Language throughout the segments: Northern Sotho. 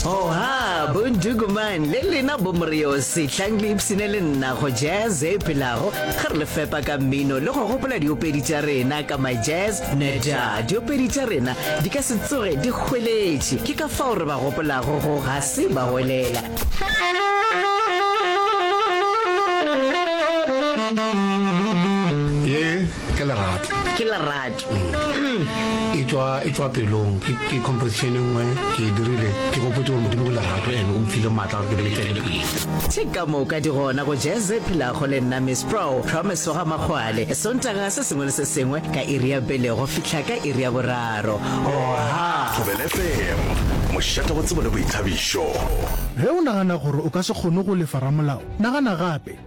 oha bondukuman le lena bomoriosi tlang le ipsine le nna go jazz e phelago ge re le fepa ka mmino le go gopola diopedi tša rena ka my jazz neta diopedi tša rena di ka se tsoge di hweletše ke ka fao re ba gopolago go ga se ba welela ke lerato ke lerato e tswa e tswa pelong ke ke composition e nngwe ke e dirile ke gopotse gore modimo ke lerato ene o mphile maatla gore ke be ke tswelele pele tše ka moka di gona go jazz e phelago le nna miss pro promise wa ga makgwale sontaga se sengwe le se sengwe ka iri ya pele go fihla ka iri ya boraro oha Thobela FM, mošate wa tsebo le boithabišo. Ge o nagana gore o ka se kgone go lefa ramolao, nagana gape.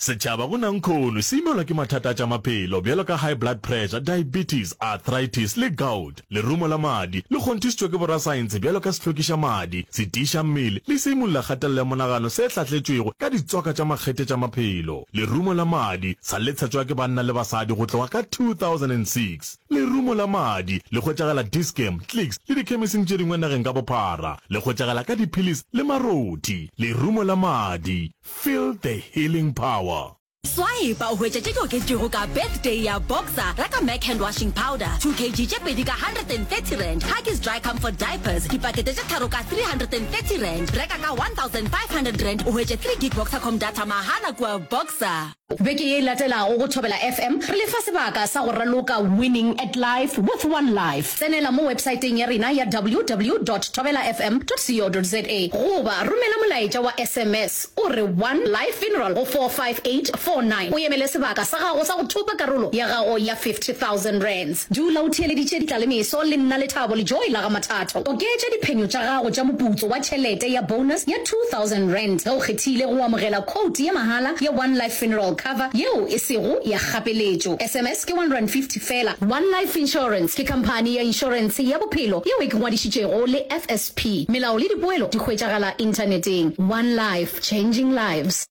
Setšhaba go nankhono se imelwa ke mathata a tša maphelo bjalo ka high blood pressure, diabetes, arthritis le gout. Lerumo la madi le kgonthišitšwe ke borasaentshe bjalo ka sehlokiša madi, setiiša mmele le seimolola kgatelelo ya monagano se hlahletšwego ka ditswaka tša makgethe tša maphelo. Lerumo la madi sa letshetšwa ke banna le basadi go tloga ka 2006. Lerumo la madi le hwetšagala Dischem, Clicks le dikhemising tše dingwe nageng ka bophara. Le hwetšagala ka diphillis le marothi. Lerumo la madi, feel the healing power. Swipe o hwetše tše di oketšego ka Birthday ya Boxer, reka Mac Hand Washing Powder, 2 kg tše pedi ka R130, Huggies Dry Comfort Diapers, dipakete tše tharo ka R330, reka ka R1,500 o hwetše 3 gig Boxercom data mahala kua Boxer. Beke ye e latelago go Thobela FM re le fa sebaka sa go raloka Winning at Life with One Life. Tsenela mo websaeteng ya rena ya ww dot thobelafm dot co dot za goba romela molaetša wa sms o re One Life Funeral go 45849 o emele sebaka sa gago sa go thopa karolo ya gago ya R50,000. Dula o theeleditše ditlalemeso le nna lethabo le joy la ga Mathatho. Oketša diphenyo tša gago tša moputso wa tšhelete ya bonus ya R2000 ge o kgethile go amogela khoutu ye mahala ya One Life Funeral Cover yeo e sego ya kgapeletšo. SMS ke R150 fela. One Life Insurance ke khamphani ya inšorense ya bophelo yeo e ke ngwadišitšego le FSP. Melao le dipoelo di hwetšagala Inthaneteng. One Life, Changing Lives.